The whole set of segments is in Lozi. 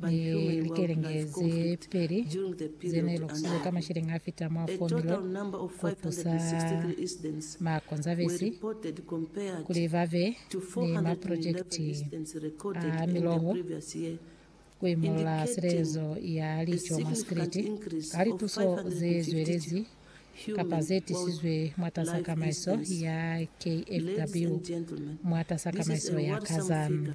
Ni likelenge ze peli ze ne lu kusizwe ka masheleñi a fita mwa 4 milioni ku tusa ma Konzavesi kuli ba be ni maprojekiti a miloho ku imolola silelezo ya lico mwa sikiliti ka lituso ze zwelezi kapa ze tisizwe mwatas'a tamaiso ya KFW mwatas'a tamaiso ya Kazan.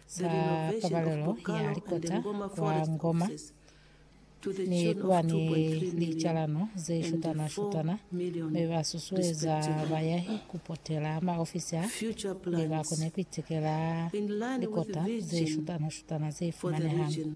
za Pabalelo ya Likota kwa Ngoma ni kuba ni licalano ze shutana-shutana mi ba susueza bayahi ku potela maofisi a mi ba kone ku itekela likota ze shutana-shutana ze fumanehang.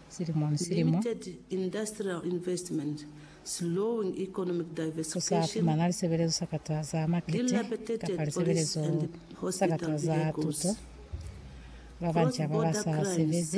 silimo ni silimo, ku sa fumana lisebelezo sa kata za makete kapa lisebelezo sa kata za tuto, ba banca ba ba sa sebezi.